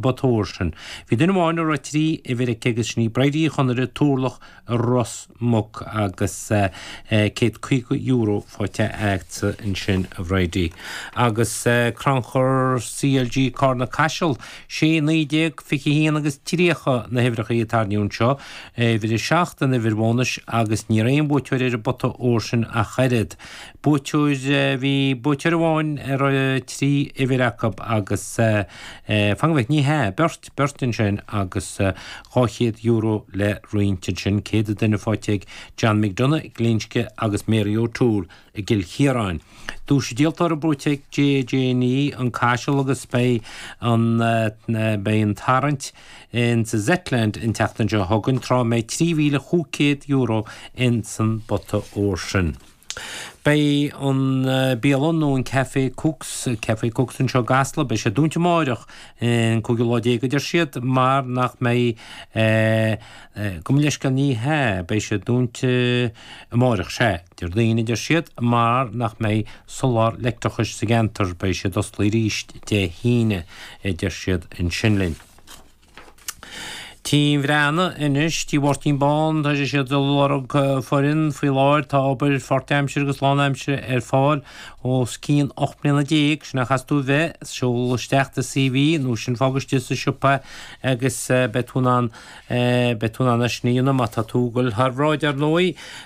bpota óir sin. Bhí duine amháin a raibh trí uimhir aici agus 'sí sin í Bridie Uí Chonaire, Turlach i Ros Muc agus €150 faighte aici ansin, a Bhridie. Agus crannchur CLG Carna Caiseal, 16 19 21 agus 30 na huimhreacha a tairníodh anseo, uimhir 7 an uimhir bhónais agus ní raibh aon bhuaiteoir ar an bpota óir sin ach oiread. buaiteoir. Bhí buaiteoir amháin a raibh trí uimhir acu agus fan go bhfeicfidh mé, ní hea, beirt, beirt ansin agus €200 le roinnt ansin, céad an duine faighte ag John McDonagh, Glinsce agus Mary O'Toole i gCill Chiaráin. Duais an díoltóra buaite ag JJ Nee, An Caiseal agus beidh an, beidh an tarraingt insa Zetland an tseachtain seo chugainn, tráth a mbeidh trí mhíle chúig céad euro ins an bpota óir sin. Beidh an bhialann nó an Café Cooks, Café Cooks anseo i gCasla, beidh sé dúnta amáireach, an cúigiú lá déag a deir siad, mar nach mbeidh eh, gabh mo leithscéal, ní hea, beidh sé dúnta amáireach, sea, Déardaoin a deir siad, mar nach mbeidh soláthar leictreachais sa gceantar, beidh siad osclaí arís Dé hAoine a deir siad ansin linn. Tigh Mheara anois, Tigh Mháirtín Bán, tá sé siad ag lorg foireann faoi láthair, tá obair pháirtaimseartha agus lánaimseartha ar fáil os cionn 18 bliana, sin a chaithfeas tú a bheith, seol isteach do CV nó sin fág istigh sa siopa agus beidh tú in ann, beidh tú in ann é sin a dhéanamh má tá tú ag dul thar bhráid, ar ndóigh.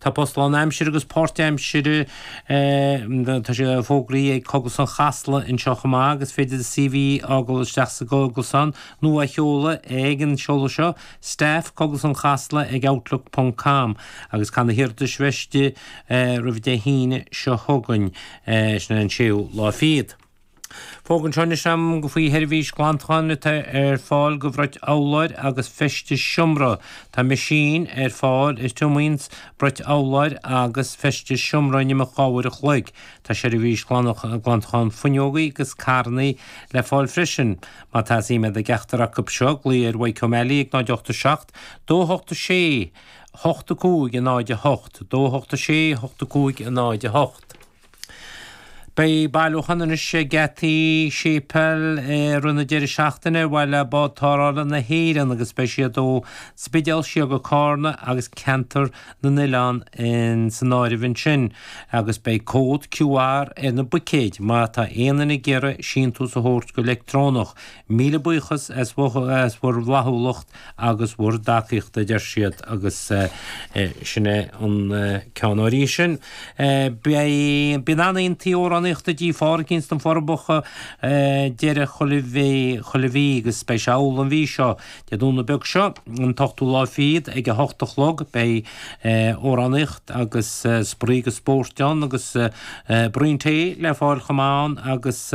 Tá post lánaimsire agus páirtaimsire tá sé fógraithe ag Cógaslann Chasla anseo chomh maith agus is féidir do CV a fhágáil isteach sa gcógaslann nó a sheoladh ag an seoladh seo, staff, cogaslannchasla ag outlook ponc com, agus caithfidh na hiarratais bheith istigh roimh Dé hAoine seo chugainn, sin an 6ú lá fichead. Fógra anseo anois agam faoi sheirbhís ghlantacháin atá ar fáil do bhrait urláir agus feistis seomra. Tá meaisín ar fáil a thriomaíonn brait urláir agus feistis seomra in imeacht dhá uair a chloig. Tá seirbhís ghlantacháin fuinneogaí agus carrannaí le fáil freisin. Má tá suim agat i gceachtar acu seo, glaoigh ar Mhichael O'Malley ag 087 286 85 08, 286 85 08. Beidh bailiúchán anois ag geataí Séipéal i rith na deireadh seachtaine ar mhaith le Bád Tarrthála na hÉireann agus beidh siad ó Spidéal siar go Carna agus Ceantar na nOileán insan áireamh ansin agus beidh cód QR ar na buicéid má tá aon duine ag iarraidh síntiús a thabhairt go leictreonach Míle buíochas as bhur bhflaithiúlacht agus bhur dtacaíocht, a deir siad, agus sin é an ceann. Uaireanta sin, bíonn an-oícheantaí amhránaíochta i dTigh Phádraicín ins na Forbacha deireadh chuile mhí, agus beidh sé amhlaidh an mhí seo. Dé Domhnaigh beag seo, an t-ochtú lá fichead, ag a hocht a chlog, beidh amhránaíocht agus spraoi agus spóirt ann, agus braon tae le fáil chomh maith ann, agus.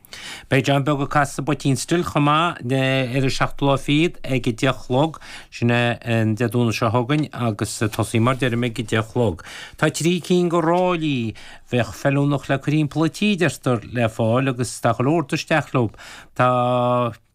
Beidh John Beag ag casadh sa bPoitín Stil chomh maith ar an seachtú lá fichead ag a deich a chlog. Sin é an Dé Domhnaigh seo chugainn agus ag tosaí mar deirim ag a deich a chlog. Tá trí cinn de ráillí a bheadh feiliúnach le cur thimpeall an tí, deirtear, le fáil agus tá go leor do isteach leob. Tá.